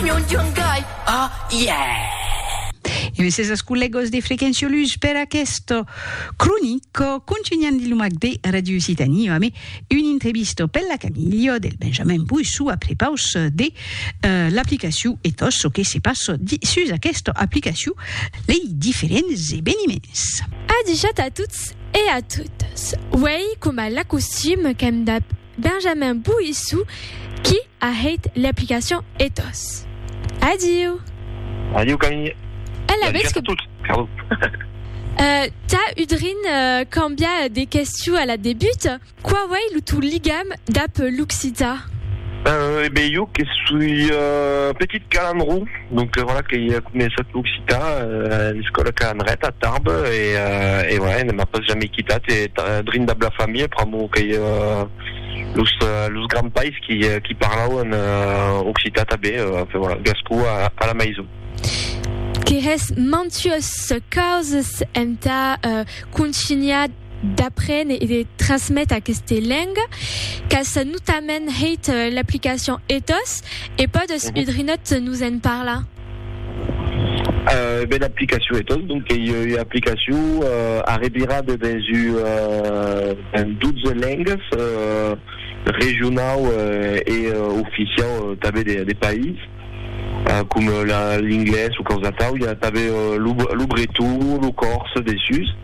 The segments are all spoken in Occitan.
Nhon John Guy, oh yeah! E me ses ascollegos de Frequenciolus per aquesto cronico contunhan de lumac de Radio Occitanie ame un intrebisto per la Camilio del Benjamin Boissou a prepaus de l'aplicaciu e tot ço que se passo sus aquesta aplicaciu lei diferents eveniments. Adishat a tots e a totas. Uèi coma l'acostume qu'èm dab Benjamin Boissou qui a hèit l'aplicacion Ethos. Adiu! Adiu Camille! E la vez que. Euh, tà udrin cambià de questiu a la debut, quau ei lo tau ligam dab l'occitan? Euh, e be jo que soi petit calandró. Donc voilà que i a començat l'occitan a l'escòla que an ret a Tarbes e voilà ne m'a pas jamei quitat e drin dab la familha pr'amor qu'ei los grands pais qui parlauen occitan tanben enfin voilà gascon a la maison. Qu'es mantues causas entà contunhar d'aprene e de trasmete aqueste lenga qu'as notament hèit l'aplicacion ethos e pòdes un drinòt nos en parlar? Ben aplicacion ethos donc qu'ei ua aplicacion arrevirada dens un 12 lengas regionau e oficiau tanben de país com l'inglés o causatau, i a tanben lo breton, lo còrse dessus.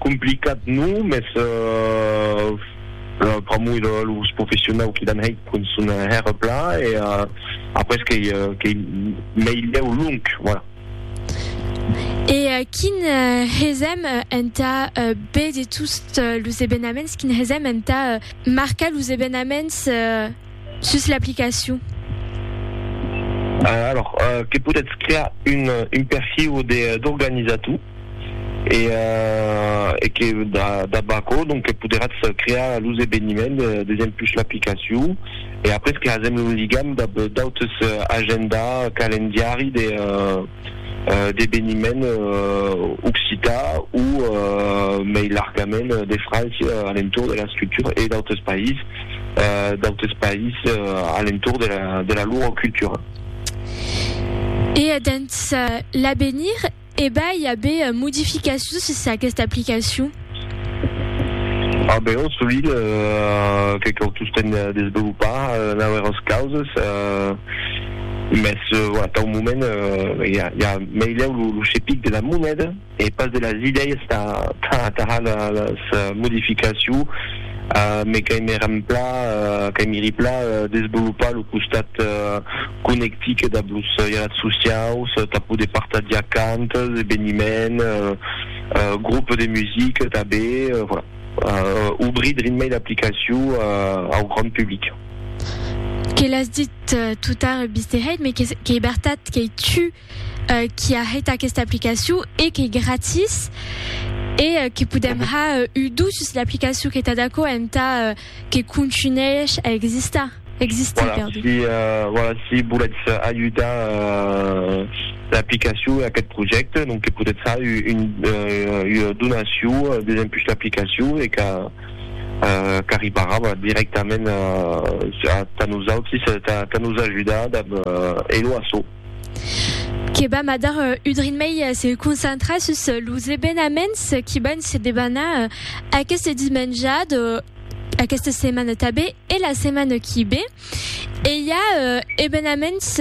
Complicat non, mès pr'amor de los professionau qui l'an hèit con son hèr pla e après qu'ei meilhèu long, voilà. E quin hesèm entà béder tots los ebenaments, quin hesèm entà marcar los ebenaments? Sus l'aplicacion. Alors, que podètz crear un perfil d'organizator e que dab aquò donc poderatz crear los eveniments dempús l'aplicacion e après creasèm lo ligam dab d'autres agenda, calendiari de. d'eveniment occitan o mei largament de França a l'entorn de la scriptura e d'autres païses, d'autres païses a l'entorn de la lor cultura. E dens l'avenir, e b'ai a aver modificacions sus aquesta aplicacion? A Beòrn sovint que cau tostemp desvelopar nauèras causes, mès tau moment i a meilhèu lo chepic de la moneda e pas de las idèias tà las modificaciu, me qu'aimi rempla qu'aimi ripla desvelopar lo costat conectic dab los jalat sociaus tà poder partagiar cantas, eveniments. Groupe de musique tanben, voilà. Obrir Dream Mail aplicacion au grand public. Que l'as dit tout tard Mister Hate, mais qu'ei bertat qu'ei tu qui a hèit aquesta aplicacion e qu'ei gratis e que podem har udusses l'aplicacion que t'as d'aquò entà Que contunhèish a existar, existir, perdon. Voilà, si, voilà, si volètz ajudar l'aplicacion e aquest projècte, donc que podètz far una donacion desempuish l'aplicacion e qu'a, qu'arribarà, voilà, directament tà nosautris, tà nos ajudar dab Hello Asso. que vam a dar un drin mei se concentrar sus los evenaments qui van se debanar aquest dimenjat aquesta setmana tabé e la setmana qui bé e i a evenaments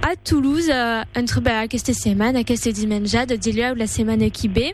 a Toulouse entre aquesta setmana aquest dimenjat dilhèu la setmana qui bé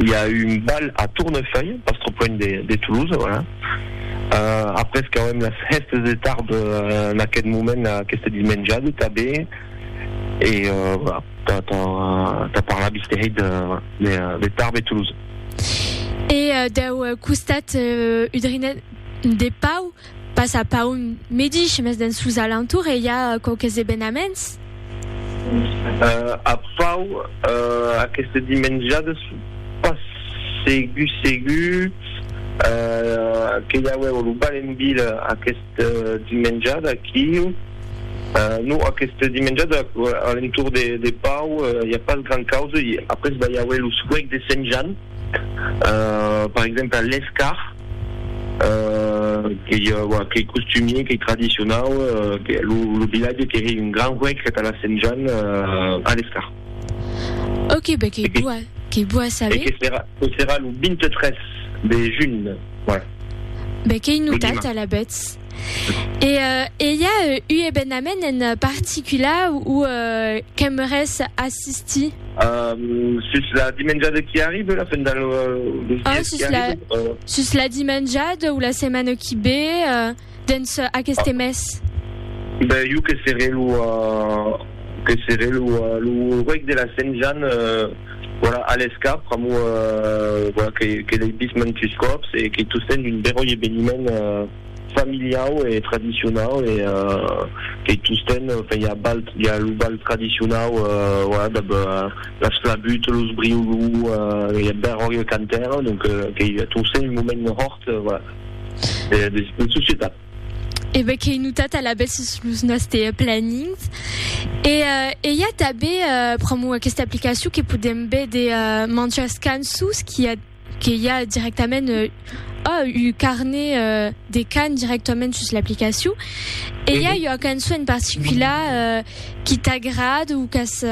i a un bal a Tournefeuille, pas trop luènh de Toulouse, voilà. Après qu'auem las hèstes de tard en aqueth moment, aqueste dimenjade tanben, e voilà, tà parlar vistèhèit de Tarbes e Toulouse. E dau costat udrinenc de Pau, Pas a Paun medish, mes dens sos alentours e i a quauques evenaments. A Pau, aqueste dimenjades, pas segur segur que i auèvo lo bal en vila aqueste dimenjade aquiu. Non, aqueste dimenjade a l'entorn de Pau i a pas gran causa. Après va i auer lo suec de Sent Jan. per exemple l'escar qu'ei qu'ei costumier qu'ei tradicionau lo vilatge qu'ei un gran huec que tà la sent Jan a l'escar ok be qu'ei boa qu'ei boa a saber que serà que serà lo 23 de junh voilà be qu'ei notat alavetz. E e i a u ebenament en particula ou qu'aimeres assistir? Sus la dimenjada qui arribe, la fin del mes qui arribe? Sus la dimenjada ou la setmana qui be dens aqueste mes? Ben jo que seré lo que seré lo ruec de la Sent Jan. Voilà, a l'escap, pr'amor voilà que l'ei vist mantus còps e qu'ei tostemps un beròi eveniment familiau e tradicionau e qu'ei tostemps enfin i a balh, i a lo balh tradicionau voilà dab las flabuts, los briolous, i a beròi el cantaire, donc qu'ei tostemps un moment hòrt, voilà, de societat. E be qu'ei notat alavetz sus los nòste planings. E i a tanben, pr'amor aquesta aplicacion, que podèm be de manjas cançons qu'i a que i a directament ua carnet de can directament sus l'aplicacion. E i a ua cançon en particular qui t'agrada o qu'as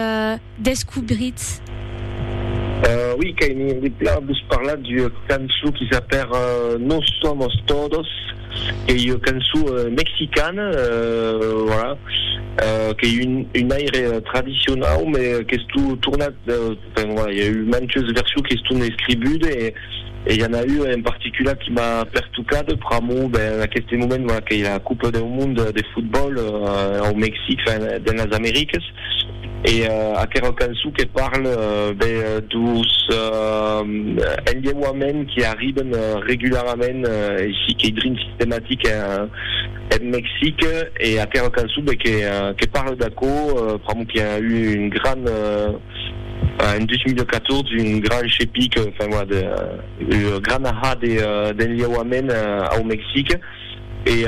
descubritz? Oui, qu'aimi en plan vos parlar d'ua cançon qui s'apèr Nos somos todos, qu'ei ua cançon mexicana, voilà, qu'ei un aire tradicionau, mès qu'estó tornat, enfin, voilà, i a eu mantes versions qu'estón escribudes, E i en a ua en particular qui m'a pertocada pr'amor ben en aqueste moment voilà qu'ei la Copa deu Mond de Fotbòl au Mexic, enfin dens las Americas e aquera cançon que parle ben d'os enlheuaments qui arriben regularament aicí qu'ei drin sistematic en Mexic e aquera cançon ben que parle d'aquò pr'amor qu'i a eu un gran En 2014, un grand chepic, enfin voilà, de, ua grana ha de, d'enliauament au Mexic, e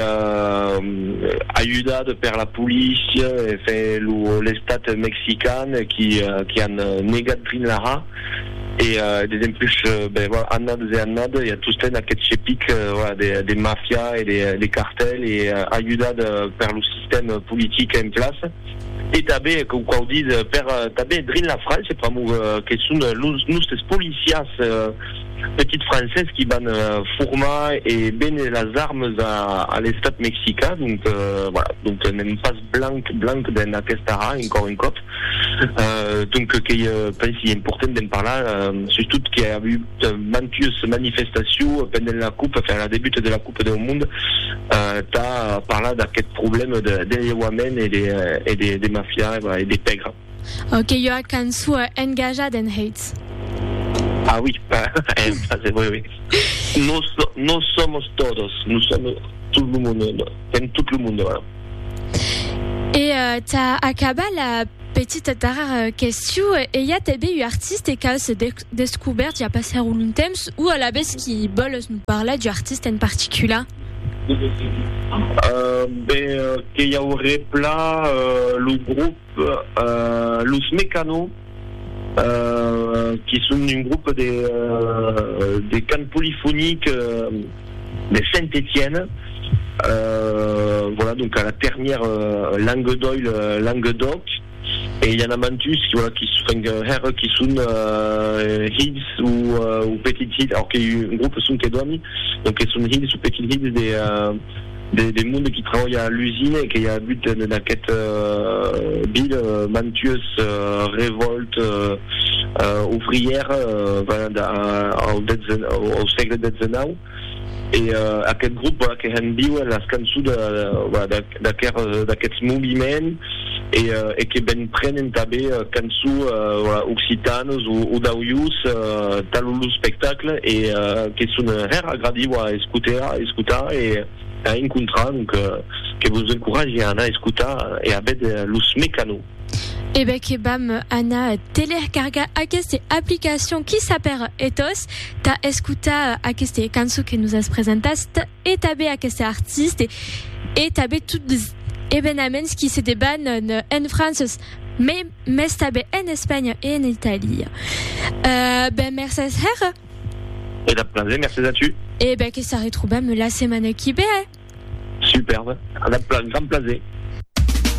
ajudat per la polícia, enfin, lo, l'estat mexican, qui, qui an negat drin la ha, e desempuish, ben voilà, annades e annades, i a tostemp aquest chepic, voilà, de, de mafia e de, de cartel, e ajudat per lo sistèm politic en place. e tanben com quau dit per tanben drin la França pr'amor que son los nustes policiers petits francés qui van formar e béner las armes a l'estat mexicain donc voilà donc n'èm pas blanc blanc dens aquesta ha encor un còp donc qu'ei pensi important d'en parlar sustot que i a avut mantues manifestacion pendent la coupe enfin la debuta de la coupe Cop deu Mond tà parlar d'aqueth problème d'enlheuament e de mafia e de pègra. Ok, ua cançó engajat en Heitz. Ah oui, en francés, oui, oui. Nos, nos somos todos, nous sommes tout lo monde, en tout lo monde, voilà. E tà acabar la petita darrèra question, ei a tanben un artiste qu'a se Descobèrt ja passèr un long temps o alavetz qu'i vòles nos parlar d'u artista en particular? Ben, que i auré pla lo grop Los Mecano, qui son un grop de de cant polifonic de Saint-Étienne, voilà donc a la ternièr Languedoil Languedoc. E i a n'a mantus qui voilà qui enfin que hèr qui son hilhs o o petits hilhs alors que un groupe son que doni donc que son hilhs o petits hilhs de de de monde qui trabalha a l'usine e que i a agut en en aquest ville mantues revòltes ouvrières pendent au dètz au sègle dètzenau. E aqueth grop voilà que hèn víuer las cançons voilà d'aqueths moviments e que ben prenen tanben cançons voilà occitanes o d'aujós tà lo espectacle e que son hèr agradits voilà a escoter a escotar e a encontrar donc que vos encoratge a anar a escotar e a véder los Mecano. E bè que vam anar telercargar aquesta aplicacion qui s'apèr Ethos tà escotar aquesta cançon que nos as presentast e tabé aquesta artiste e tabé tot les evenaments qui se deban en Frances me mes tabé en Espanha e en Italia. Ben mercés hèra. E dab plaser, mercés a tu. E bè que s'arretrobam la setmana qui bè. Superbe, a dab gran plaser.